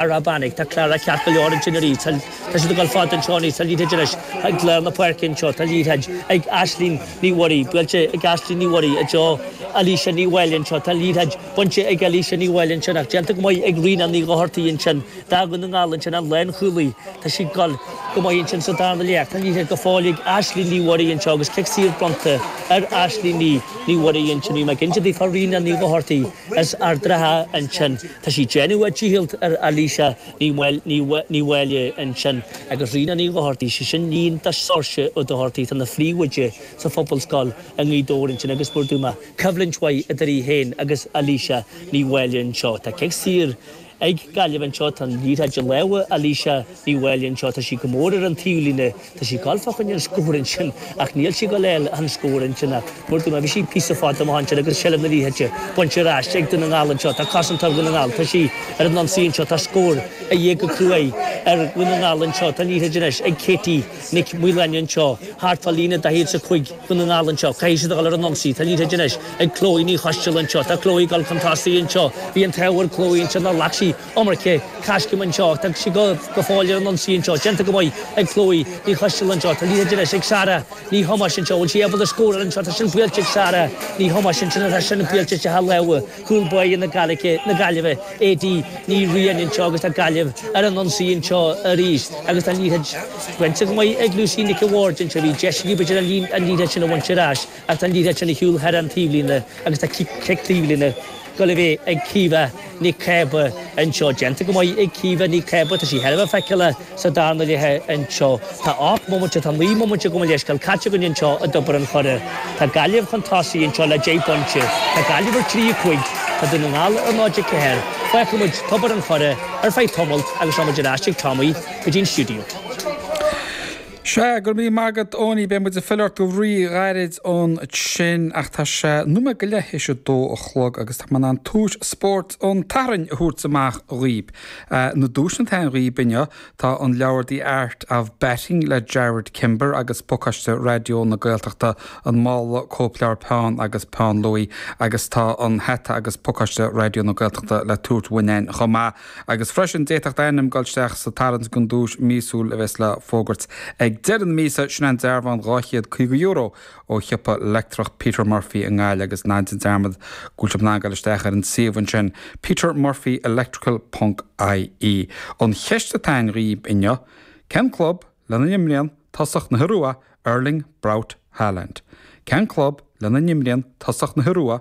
Ara bainig, tá Clara ceart go leor ansin arís, tá siad ag dul fad an tseoinín tá an liathróid anois, tá Gleo na páirce anseo, tá an liathróid ag Aisling Ní Mhuirí, buailte ag Aisling Ní Mhuirí, i dtreo Alisha Ní Mháille anseo, tá an liathróid bainte ag Alisha Ní Mháille ansin ach déanta go maith ag Ríona Ní Dhochartaigh ansin, fear Dhún na nGall ansin, an lánchúlaí, tá sí ag dul go maith ansin sa darna leath, tá an liathróid go fóill ag Aisling Ní Mhuirí anseo agus cic saor bronnta ar Aisling Ní Mhuirí ansin, níl mé cinnte di, tá Ríona Ní Dhochartaigh. As Ard an Rátha ansin. Tá sí ag déanamh a dícheallt ar Alisha Ní Mháille ansin agus Ríona Ní Dhochartaigh, sí sin iníon do Seoirse Ó Dochartaigh, atá ina phríomhoide sa phobalscoil i nGaoth Dobhair ansin agus mar a dúirt mé coimhlint mhaith idir í féin agus Alisha Ní Mháille anseo. Tá cic saor. Ag Gaillimh anseo tá an liathróid i lámha Alisha Ní Mháille anseo, tá sí go mór ar an taobhlíne, tá sí ag goil fá choinne an scóir ansin ach níl sí ag goil a fháil an scór ansin ach mar a dúirt mé bhí sí píosa fada amach ansin agus seilbh na liathróide bainte ar ais ag Dún na nGall anseo, tá cosantach Dhún na nGall, tá sí ar an ionsaí anseo, tá scór a dhíth go cruaidh ar Dhún na nGall anseo, tá an liathróid anois ag Katie. Nic Mhaoláin anseo, thart fá líne 45 Dún na nGall anseo. Caithfidh siad a dhul ar an ionsaí. Tá an liathróid anois ag Chloe Ní Choisteal anseo. Tá Chloe ag dul chun tosaigh anseo. Bhí an t-ádh ar Chloe anseo nár ghlac sí iomarca coiscéim anseo ach tá sí go fóill ar an ionsaí anseo. Déanta go maith ag Chloe Ní Choisteal anseo. Tá an liathróid anois ag Sarah Ní Thomáis anseo. Bhfuil sí ábalta scóráil anseo? Tá sin buailte ag Sarah Ní Thomáis ansin. Tá sin buailte istigh i lámha. Cúl báire na Gaillimhe, A.D. Ní Riain anseo agus tá Gaillimh ar an ionsaí anseo arís agus tá an liathróid bainte go maith ag Lucy Nic a' Bhaird anseo. Bhí deis acu b'fhéidir an liathróid sin a bhaint ar ais ach tá an liathróid i ndiaidh a dhul thar an taobhlíne agus tá cic taobhlíne ag goil a bheith ag Caoimhe Nic Cába anseo. Déanta go maith ag Caoimhe Nic Cába. Tá sí thar a bheith feiceálach. Sa darna leath anseo tá ocht mbomaite, tá naoi mbomaite gabh mo leithscéal, caite againn anseo i dTobar an Choire. Tá Gaillimh chun tosaigh anseo le deich bpointe. Tá Gaillimh ar trí a cúig. Tá Dún na nGall ar náid a ceathair. Fágfaidh muid Tobar an Choire ar feadh tamalt agus seo muid ar ais ag Tommy go dtí an stiúideo. Sea, go raibh míle maith agat Eoiní, beidh muid ag filleadh ort go rí-ghairid ansin ach tá sé nóiméad go leith théis a dó a chlog agus tá mé in ann tomhas Spórt an tSathairn a thabhairt amach dhaoibh. Na duaiseanna atá ann dhaoibh inniu tá an leabhar The Art of Batting le Jarrod Kimber agus Pacáiste Raidió na Gaeltachta, An Mála Cóipleabhar Peann agus Peann Luaí agus tá an Hata agus Pacáiste Raidió na Gaeltachta le tabhairt uainn againn chomh maith agus freisin d'fhéadfadh d'ainm dul isteach sa tarraingt don duais míosúil a bheas le fógairt ag deireadh na míosa, sin an dearbhán €250 ó shiopa leictreach Peter Murphy i nGaillimh agus ná déan dearmad go bhfuil sibh in ann dul isteach ar an suíomh ansin, petermurphyelectrical ponc IE. An cheist atá ann dhaoibh inniu, cén club lena n-imríonn tosach na hIorua Erling Braut Haaland? Cén club lena n-imríonn tosach na hIorua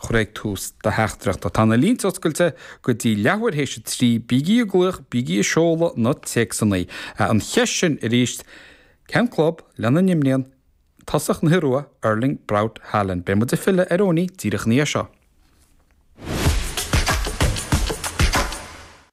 chur ag tús do theachtaireachta. Tá na línte oscailte go dtí leathuair théis a trí, bígí ag glaoch, bígí ag seoladh na téacsanna. An cheist sin arís, cén club lena n-imríonn tosach na hIorua, Erling Braut Haaland? Beidh muid ag filleadh ar Eoin díreach ina dhiaidh seo.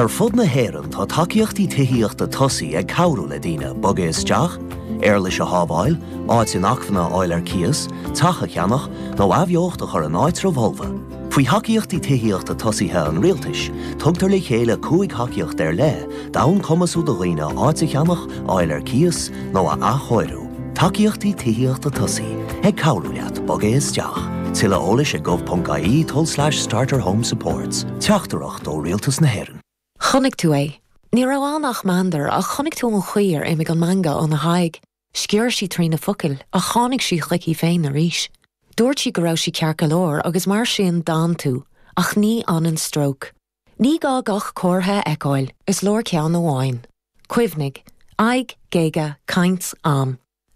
Ar fud na hÉireann tá tacaíochtaí tithíochta tosaigh ag cabhrú le daoine bogadh isteach, éarlais a shábháil, áit inacmhainne a fháil ar cíos, teach a cheannach, nó athbheocht a chur in áitreabh folamh. Faoi thacaíochtaí tithíochta tosaigh an Rialtais, tugtar le chéile cúig thacaíocht ar leith d'fhonn cumasú do dhaoine áit a cheannach, a fháil ar cíos, nó a athchóiriú. Tacaíochtaí Tithíochta Tosaigh ag cabhrú leat bogadh isteach. Tuilleadh eolais ag gov.ie tulslais starterhomesupports. Teachtaireacht ó Rialtas na hÉireann. Chonaic tú é. Ní raibh ann ach meandar, ach chonaic tú an chaoi ar imigh an meangadh óna haghaidh. Sciorr sí trí na focail, ach tháinig sí chuici féin arís. Dúirt sí go raibh sí ceart go leor, agus mar sin d'fhan tú. Ach ní fhanann stróc. Ní gá gach comhartha a fheiceáil, is leor ceann amháin. Cuimhnigh, aghaidh, géaga, caint, am.